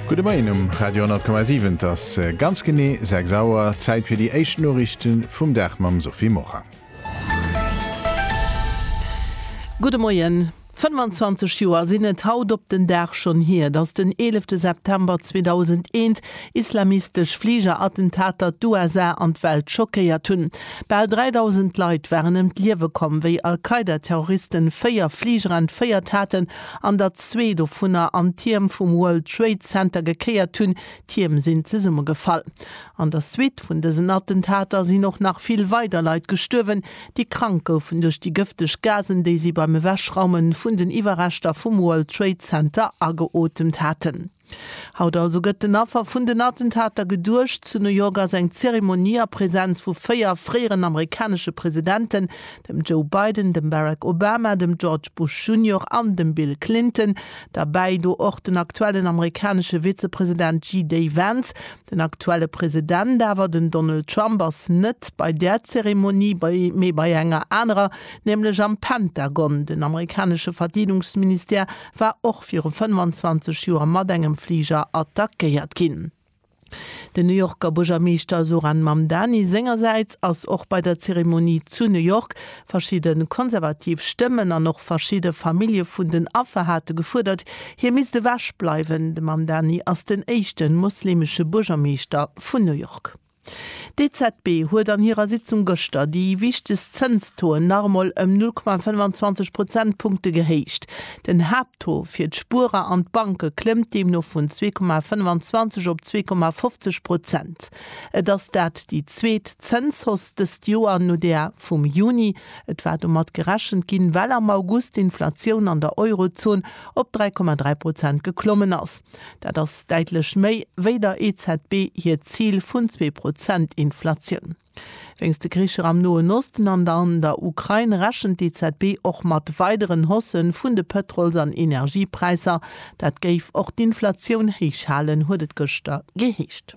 Gudde Moien um Radio 10,7. Et ass ganz genee 6 Auer. Zäit fir déi éischt Noriichte vum Dag mam Sophie Morang. Gudde Moien. 25 Joer sinn et haut op den Dag schonn hier, datt den 11 September 2001 islamistesch Fligerattentater d'USA an d'Welt schockéiert hunn. Bal 3.000 Leit waren ëm d'Liewe komm, wéi Al-Qaida-Terroristen véier Fliger entféiert haten an datt zwee dovunner an d'Tierm vum World Trade Center gekéiert hunn, d'Tierm sinn zesummegefall. An der Suite vun dësen Attentater sinn och nach vill weider Leit gestuerwen, déi krank goufen duerch déi gëfteg Gasen, déi si beim Ewechraume vun den Iwwerreschter vum World Trade Center ageotemt haten. Haut also gëtt den Affer vun den Attentater geduecht. Zu New York ass eng Zeremonie a Präsenz vu véier fréieren amerikanesche Presidenten, dem Joe Biden, dem Barack Obama, dem George Bush Junior an dem Bill Clinton, derbäi. Do och den aktuellen amerikanesche Vizepresident JD Vance. Den aktuelle President awer, den Donald Trump, ass net bei där Zeremonie, mee bei enger anerer, nämlech am Pentagon. Den amerikanesche Verdeedungsministère war och. viru 25 Joer mat engem Fliger attackéiert ginn. Den New Yorker Buergermeeschter Zohran Mamdani sengersäits ass och bei der Zeremonie zu New York. Verschidde konservativ Stëmmen an och verschidde Famillje vun den Affer hate gefuerdert, hie misst ewech bleiwen. De Mamdani ass den éischte mosleemesche Buergermeeschter vun New York. D'EZB huet an hirer Sitzung gëschter déi wichtegst Zënstoen nach emol ëm 0,25 Prozentpunkte gehéicht. Den Haapttaux fir d'Spuerer an d'Banke klëmmt deemno vun 2,25 op 2,50 Prozent. Et ass dat déi zweet Zënshausse dëst Joer no där vum Juni. Et war domat gerechent ginn, well am August d'Inflatioun an der Eurozon op 3,3 Prozent geklommen ass. Dat ass däitlech méi, wéi der EZB hiert Zil vun zwee Prozent Inflatioun. Wéinst de Kricher am Noen Osten an an der Ukrain rechent d'EZB och mat weideren Hausse vun de Pëtrols an Energiepräisser. Dat géif och d'Inflatioun héich halen, huet et gëschter geheescht.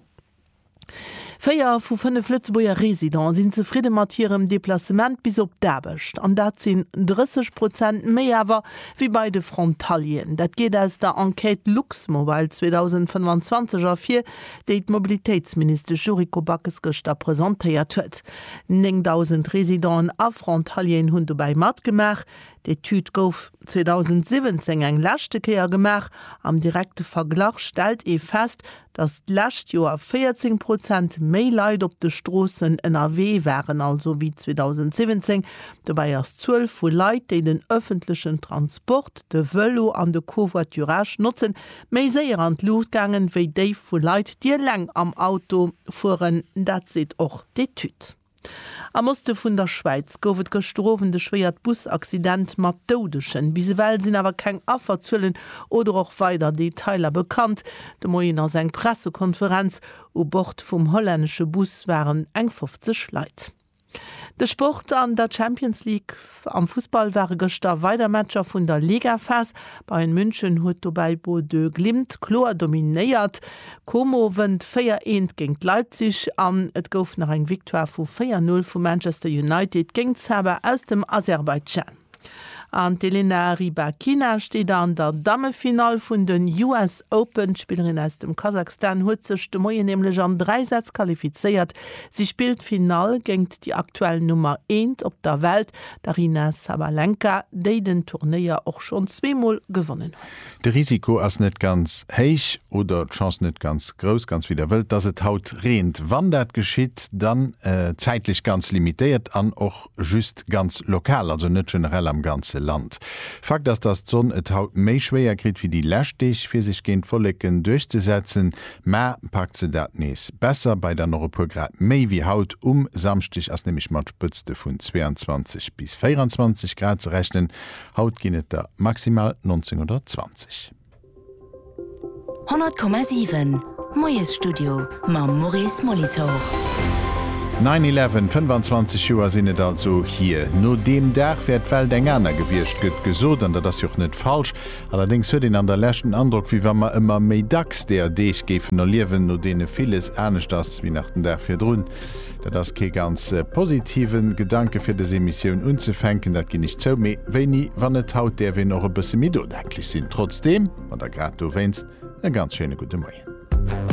Véier vu fënnef Lëtzebuerger Residenten sinn zefridde mat hirem Deplacement bis op d'Aarbecht. An dat sinn 30 Prozent méi awer wéi bei de Frontalieren. Dat geet aus der Enquête Luxmobile 2025 ervir, déi d'Mobilitéitsministesch Yuriko Backes gëschter presentéiert huet. 9.000 Residenten a Frontalieren hunn dobäi matgemaach. D'Etüd gouf 2017 eng leschte Kéier gemaach. Am direkte Verglach stellt ee fest, Datt d'lescht Joer 14 Prozent méi Leit op de Stroossen ënnerwee waren also wéi 2017. Dobäi ass d'Zuel vu Leit, déi den ëffentlechen Transport, de Vëlo an de Covoiturage notzen, méi séier an d'Luucht gaangen, wéi déi vu Leit, déi eleng am Auto fueren. Dat seet och d'Etüd. Am Oste vun der Schwäiz gouf et gëschter Owend e schwéiert Busaccident mat Doudegen. Bis ewell sinn awer keng Afferzuelen oder och weider Detailer bekannt. De Moien ass eng Pressekonferenz. U Bord vum hollännesche Bus waren eng 50 Leit. De Sport an der Champions League. Am Fussball ware gëschter weider Matcher vun der Ligaphas. Bayern München huet dobäi Bodø Glimt kloer dominéiert. Como wënnt 4 eent géint Leipzig an et gouf nach eng Victoire vu 4 Null vu Manchester United géint Saba aus dem Aserbaidschan. An d'Elena Rybakina steet an der Dammefinall vun den US Open. D'Spillerin aus dem Kasakhstan huet sech de Moien nämlech an 3 Sätz qualifizéiert Si spillt d'Finall géingt déi aktuell Nummer eent op der Welt, d'Aryna Sabalenka, déi den Turnéier och schonn zweemol gewonnen huet. De Risiko ass net ganz héich oder d'Chance net ganz grouss, ganz wéi der wëllt, dass et haut reent. Wann dat geschitt, dann zäitlech ganz limitéiert an och just ganz lokal, also net generell am ganze Land. Fakt ass, datt d'Sonn et haut méi schwéier kritt wéi déi lescht Deeg, fir sech géint d'Wolleken duerchzesetzen. Mä packt se dat nees besser, bei dann och e puer Grad méi wéi haut. Um Samschdeg ass nämlech mat Spëtzte vun 22 bis 24 Grad ze rechnen, haut ginn et der maximal 19 oder 20. 100,7, Moiesstudio mam Maurice Molitor. Nine Eleven, 25 Joer sinn et also hier. No deem Dag wär d'Welt eng aner gewiescht, gëtt gesot, an dat ass jo och net falsch. Allerdéngs huet een an der Lescht den Androck, wéi wa mer ëmmer méi dacks deeër Deeg géifen erliewen, no deene villes anescht ass wéi nach den Dag virdrun. Dat ass kee ganz positiven Gedanke fir des Emissioun unzefänken, dat ginn ech zou, mee wéini wann net haut däerf een och e bësse méi nodenklech sinn. Trotzdeem, an da grad dowéinst, e ganz schéine gudde Moien.